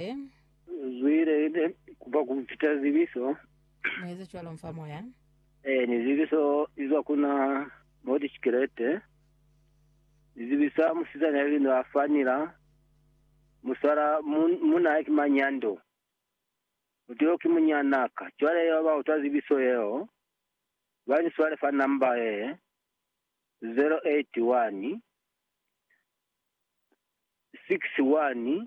Amen. Zwile ne kupa ku fita zibiso. Mueze cwalo mfa moya. Eh, ni zibiso izwa kuna moti chikelete. Ni zibisa musizana ya lino a fanila. Muswala mun, muna ya kimanyando. Muteo ki munyanaka. Cwale yo ba utwa zibiso yeo. Ba ni swale fa namba ye. 081 61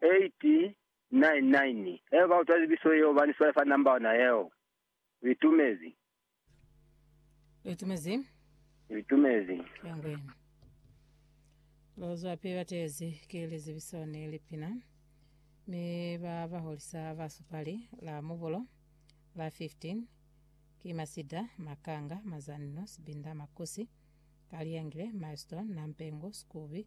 899 Haiba ha u twa zibiso yeo ba ni swale fa number ona yeo. U itumezi. U itumezi. U itumezi. Ya ngwenu. Ba zwapi ba tezi ki lizibiso ni lipina, mi ba ba holisa ba supali la mubulo la 15 ki Masida, Makanga, Mazanno, Sibinda, Makusi, Kaliyangile, Milestone, Nampengu, Skubi,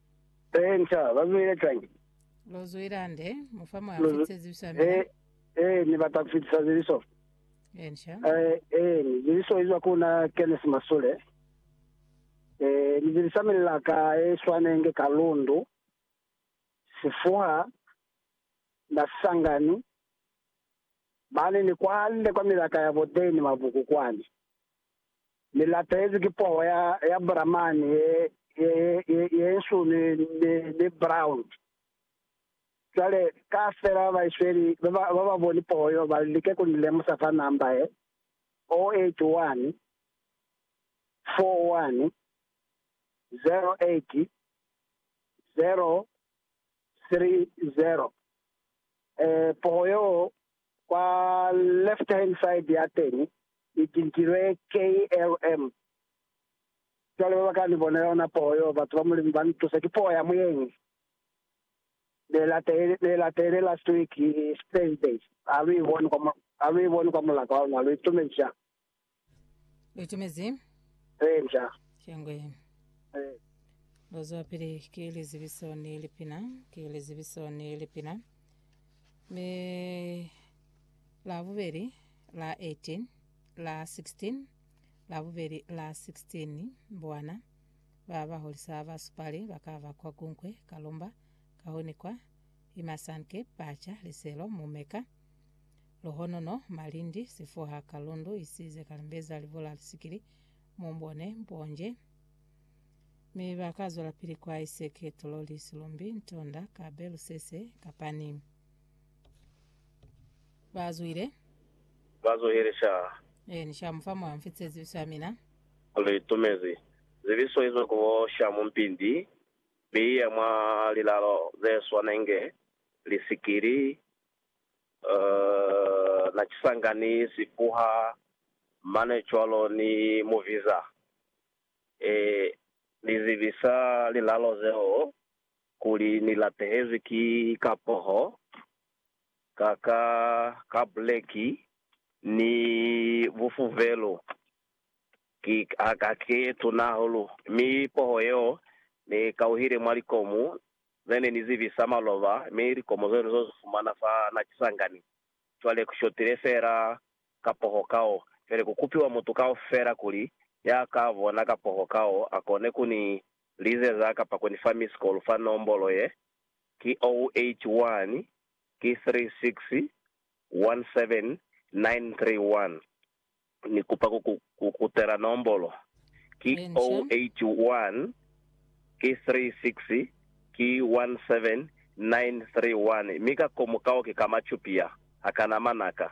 He, nca, ba zwile cwañi? Lo zwila nde, mu fa mwa Lu, fitise zibiso ya mina. he, he, Ni bata ku fitisa zibiso. He, nca. He, he, ni zibiso izwa ku na Kenneth Masule. He, ni zibisa milaka ye swanenge ka lundu, sifuha, na sisangani. Mane ni kwalile kwa milaka ya bo Dane Mabuku kwani. Ni lapezi ki poho ya, ya Buramani ye, ye, ye, ye, ye nsu ni, ni, ni brown. Cwale, kaufela ba Baisweli ba ba, ba ba boni poho yo, ba like ku ni lemusa fa namba ye, 081 41 08 030. E, poho yo, Kwa left hand side yateñi i tintilwe KLM. Cwale baba ka ni bona yona poho yo, batu ba Mulimu ba ni tusa. Ki poho ya muyengi ne latele, ne latele last week, Thursday. Ha lu i boni kwa, ha lu i boni kwa mulaka wa luna, lu itumezi cwani? Lutumezi. Eya. Shangwe. Eh. Lozwa pili ke lizibiso ni lipina, ke lizibiso ni lipina. Me la bubeli la 18, la 16, la bubeli la 16 bwana ba ba holisa ba supali ba ka ba kwa kunkwe kalumba ka honi kwa imasanke pacha liselo mumeka Luhonono, malindi, sifuha, kalundu, isize, kalimbeza, libola, lisikili, mumbone, mponje. Mi ba ka zwelapili kwa iseke, tololi, silumbi, ntonda, kabe, lusese, kapani. Ba zwile. Ba zuhile sha. Ee, ni sha mufa mwa mfi tse zibiso ya mina. Li tumezi. Zibiso izo ku bo sha mumpindi, mi iya mwa lilalo ze swanenge, lisikili, Uh, na kisanga ni si kuha mane cwalo ni mu biza. E, ni zibisa lilalo zeo kuli ni latehezwi ki kapoho, ka, ka, ka buleki, ni bufuvelu. Ki, ha, ha ki ye tuna hahulu. Mi poho yeo ni kauhile mwa likomu, Ne ni ni zibisa maloba mi likomo zeo ni zo zi fumana fa na kisangani. Cwale ku shotile fela kapoho kao. Cwale ku kupiwa mutu kaufela kuli ya ka bona kapoho kao a kone ku ni lizeza kapa ku ni fa missed call fa nombolo ye, ki 081 ki 36 17 931. Ni kupa ku ku kutela nombolo. Ki 081 ki 36 ki 17931 mi ka komu kao ki ka machupi ya ha kana manaka.